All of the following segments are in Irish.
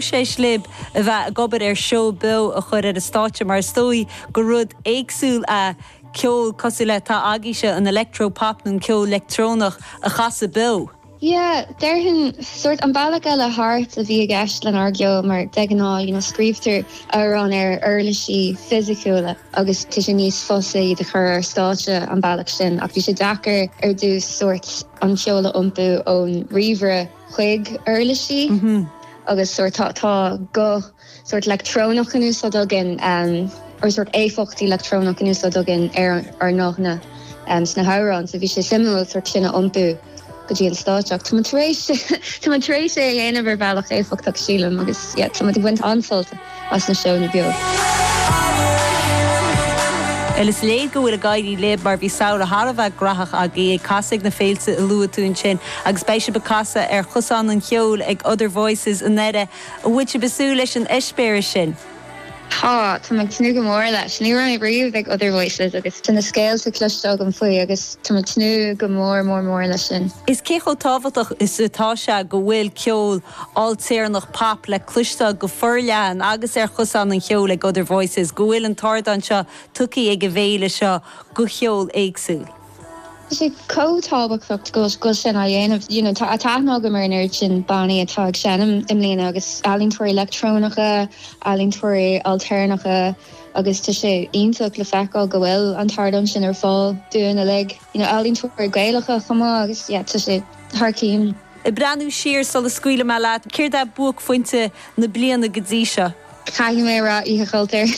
Próiseas libh a bheith ag obair ar seó beo a chur ar an stáitse mar is dóigh gur rud éagsúil é ceol cosúil le atá agaibhse, an electro-pop nó an ceol leictreonach a chasadh beo. Yeah, déarfainn, sórt, an bealach eile thart a bhí i gceist lenár gceol mar de ghnáth, you know, scríobhtar amhráin ar uirlisí fisiciúla agus tá sé níos fusa iad a chur ar stáitse an bealach sin ach bhí sé deacair ar dtús, sórt, an ceol a iompú ón ríomhaire. chuig uirlisí agus sórt tá tá guth sórt leictreonach in úsáid againn or sórt éifeachtaí leictreonach in úsáid againn ar ár nguthanna sna hamhráin so bhí sé suimiúil sórt sin a iompú go dtí an stáitse ach tá muid tar éis tá muid tar éis é a dhéanamh ar bhealach éifeachtach sílim agus yeah tá muid ag baint an-sult as na seónna beo. Bhuel, is léir go bhfuil ag éirí libh mar bhí samhradh thar a bheith graitheach agaibh ag casadh ag na féilte a luaigh tú ansin agus beidh sibh ag casadh ar Chosán an Cheoil ag Other Voices i nDoire. An bhfuil sibh ag súil leis an eispéireas sin? Tá, táim ag tnúth go mór leis. Ní raibh mé riamh ag Other Voices agus tá na scéalta cloiste agam faoi agus táim ag tnúth go mór mór mór leis sin. Is cé chomh tábhachtach is atá sé go bhfuil ceol. ailtéarnach pop le cloisteáil go forleathan agus ar Chosán an Cheoil ag Other Voices, go bhfuil an t-ardán seo tugtha ag an bhféile seo do cheol éagsúil. Tá sé chomh tábhachtach é sin á dhéanamh, you know. Tá aithne agam ar an oiread sin bannaí atá ag seinm i mbliana agus ealaíontóirí leictreonacha, ealaíontóirí ailtéarnacha agus tá sé iontach le feiceáil go bhfuil an t-ardán sin ar fáil dúinn uilig, you know, ealaíontóirí Gaelacha chomh maith agus, yeah, tá sé thar cionn. Ag breathnú siar sula scaoilfidh mé leat, céard é buaicphointe na bliana go dtí seo? Caithfidh mé a rá Oíche Chultúir.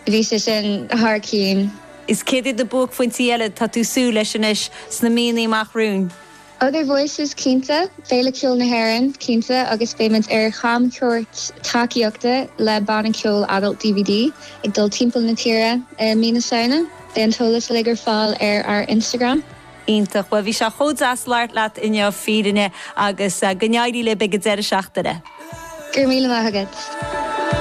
Bhí sé sin thar cionn. Is céard iad na buaicphointí eile atá tú ag súil leis anois sna míonna amach romhainn? Other Voices, cinnte. Féile Ceoil na hÉireann, cinnte, agus beidh muid ar chamchuairt tacaíochta le banna ceoil Adult DVD ag dul timpeall na tíre i mí na Samhna. Beidh an t-eolas uilig ar fáil ar ár Instagram. Iontach. Bhuel, bhí sé chomh deas labhairt leat inniu, fírinne, agus go n-éirí libh ag an deireadh seachtaine. Go raibh míle maith agat.